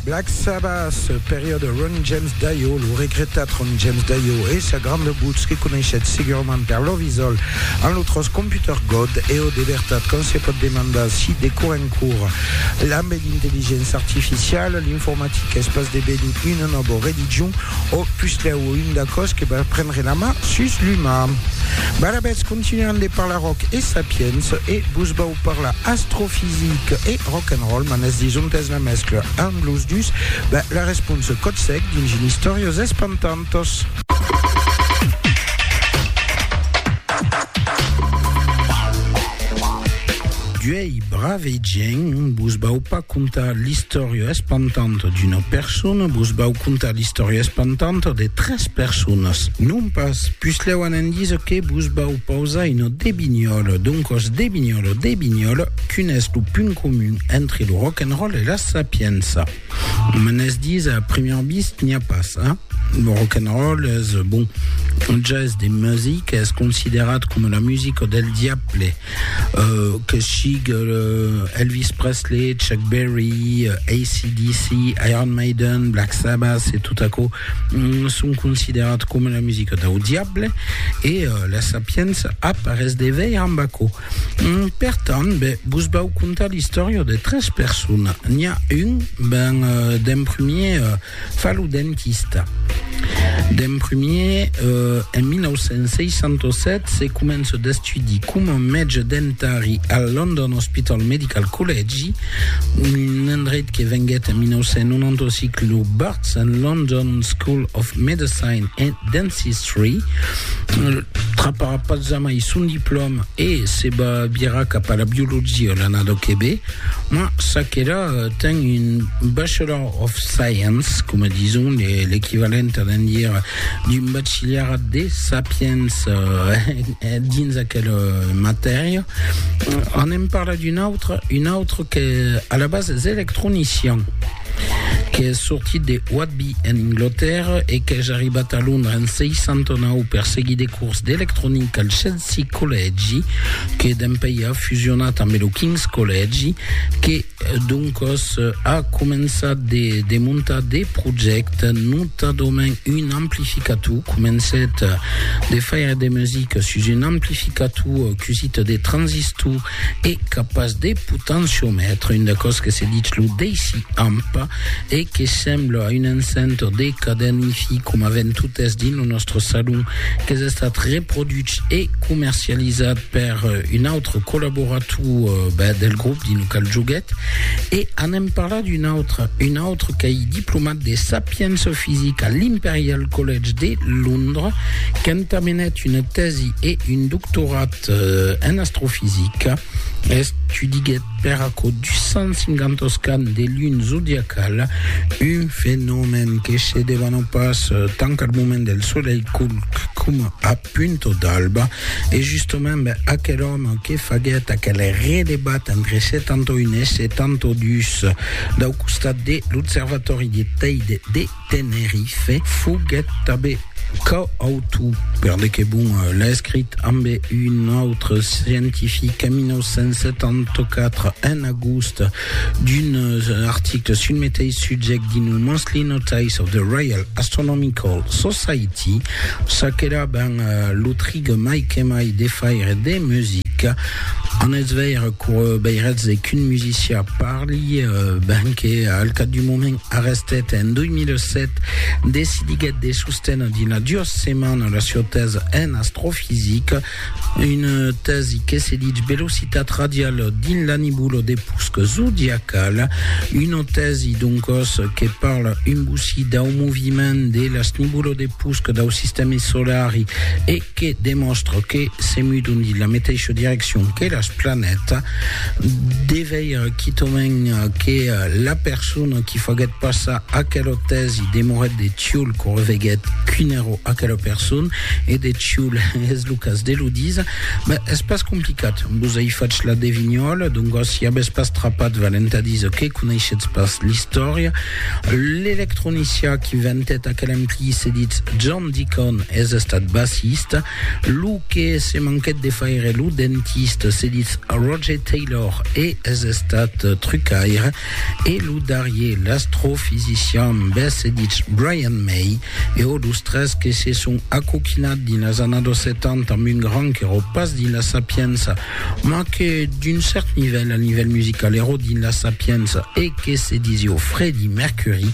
Black Sabbath, periòde Ron James Dio, lo regretat Ron James Dio e sa granda votz que coneishètz segurament per Love Is All en lo tròç Computer God e ò de vertat quand se pòt demandar si de cor en cor lambe l'intelligéncia artificiala l'informatica es pas devenut una nòva religion ò puslèu un d'aquò's que va prendre la man sus l'umà. Barabètz continuan de parlar ròc e sapiença e vos vau parla astrofisic e rock and roll, m'an es dis ont es la mescla ant los dus? Ben, la responsa còth sec dins un Istòrias espantantas. D'uei brave gent, vos vau pas contar l'istòria espantanta d'una persona, vos vau contar l'istòria espantanta de tres personas. Non pas, puslèu an en díser que vos vau Pausa en ò de Vignòl. Doncòs de Vignòl ò de Vignòl, quin es lo punt comun entre lo rock and roll e la sapiença? Me n'es dits a première vista n'i a pas, hein? Lo rock and roll es, bon, un gèst de music, es considerat coma la musica del diable, que sigue Elvis Presley, Chuck Berry, AC/DC, Iron Maiden, Black Sabbath e tot aquò. son considerat coma la musica dau diable e la sapienza ap res de veir amb aquò. Per tant, be, vos vau contar l'istòria de tres persona. N'i a un, ben, d'en premier, fa lo dentista. D'en premier, en 1967, se comença d'estudi coma mètge dentari al London Hospital Medical Collegi, un endreit que venguèt en 1995 lo bar Sen London School of Medicine and Dentistry, traparà pas jamai son diplòm e se va virar cap a la biologia l'annada que ve, ma ça que là ten un Bachelor of Science, coma dison l'equivalent a d'en dire d'un bachilharat de sapiença dins aquela matèria. Anem parlar d'un autre, un autre que a la base es electronician. qu'es sortit de Whitby en Englotèrra e qu'es arribat a Londra en 69 per seguir de cors d'electronica al Chelsea Collègi que dempèi a fusionat ambe lo King's Collègi que doncos a començat de de montar de projècte notadament un amplificator comencèt de faire de musica sus un amplificator cusit de transistor e capaç de potenciomètre, un d'aquò's que se ditz lo deci-amp e que sembla a un encentor de cadèn Hi-Fi coma ven totes dins lo nòstre salon, qu'es estat reproduch e comercializat per un autre collaborator del grop dins lo qual joguèt e anem parlar d'un autre, un autre qu'ei diplomat de sapiença fisica a l'Imperial College de Londres, qu'entamenèt una tèsi e un doctorat En astrofisica, estudiguèt per aquò 250 oscans de luna zodiacala, un fenomèn que se devana pas tant al moment del solelh culc coma a punta d'alba. E justament aquel òme que faguèt aquel redebat entre 71 e 72 dau costat de l'observatòri de Teide de Tenerife foguèt tanben coautor, per de que bon l'a escrit ambe un autre scientific en 1974, en agost, d'un article sul meteis subject dins lo Monthly Notice of the Royal Astronomical Society, ça qu'èra ben lo trig mai que mai de faire de musica, en es veire qu'o beiretz qu'un musicià parli, ben que al cap du moment, Arrestet en 2007, decidiguèt de sostener dina duas setmanas la sieu tèsa en astrofisica, una tèsi que se ditz velocitat radiala dins la nebula de pusc zodiacala, una tèsi doncòs que parla un bocí dau moviment de las nebulas de pusc dau sistèmi solari e que demòstra que se mudon dins la meteisha direccion que las planètas, de veire quitament que la persona qui faguèt passar aquela tèsi demorèt de Tioul que reveguèt quin èra aquela persona, e de Tioul es lo cas de lo díser, ben, es pas complicat, vos ai fach la devinhòla, doncas si avètz pas trapat valent a díser que coneishetz pas l'istòria, L'electronicià qui ventèt aquel MP se ditz John Deacon, es estat bassista. Lo que se manquèt de faire lo dentista se ditz Roger Taylor e es estat trucaire. E lo darrier, l'astrofisician, bes se ditz Brian May. E ò los tres que se son acoquinat dins las annados 70 amb un grand qu'eró pas dins la sapiença, ma que d'un cèrt nivèl, al nivèl musical, ero dins la Sapienza e que se disió Fredi Mercury,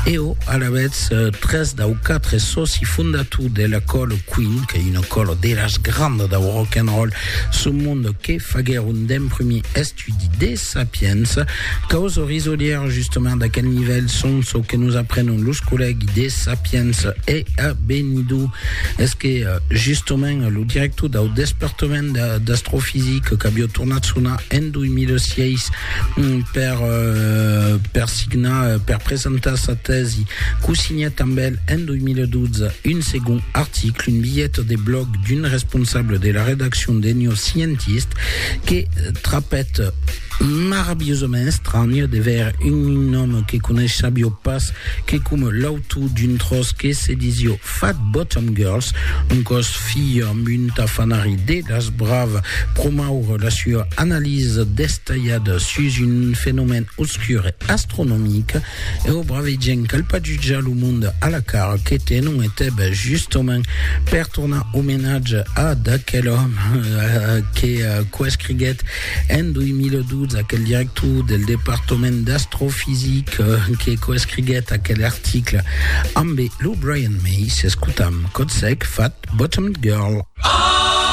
eo alavetz tres dau quatre sòci fondator de la còla Queen, qu'ei una còla de las grandas dau rock and roll sul monde que faguèron d'emprumir estudi de Sapiens, caus o risolièr justement d'aquel nivèl son çò que nos aprenon los collègues de Sapiens e a Benidó es que justement lo director dau despertament d'astrofisic qu'avió tornat sonar en 2006 per per signar per presentar sa tèsi qu'o signèt amb el en 2012 un segond article, un bilhet de blòg d'un responsable de la redaccion d'Enio Scientist. que trapèt maravilhosament estranh de veire un nòme que coneisha biò pas, que coma l'autor d'un tròç que se disió Fat Bottom Girls, un còs filha amb un tafanari de las bravas, promoure la sua analisa destalhada sus un fenomèn obscur e astronomic, E o brave gent cal pas jutjar lo mond a la cara que te non e teb justament per tornar omenatge a d'aquel òme que quò escriguèt en 2012 aquel director del departament d'astrofisic que quò escriguèt aquel article ambe lo Brian May s'escutam Codsec Fat Bottomed Girl.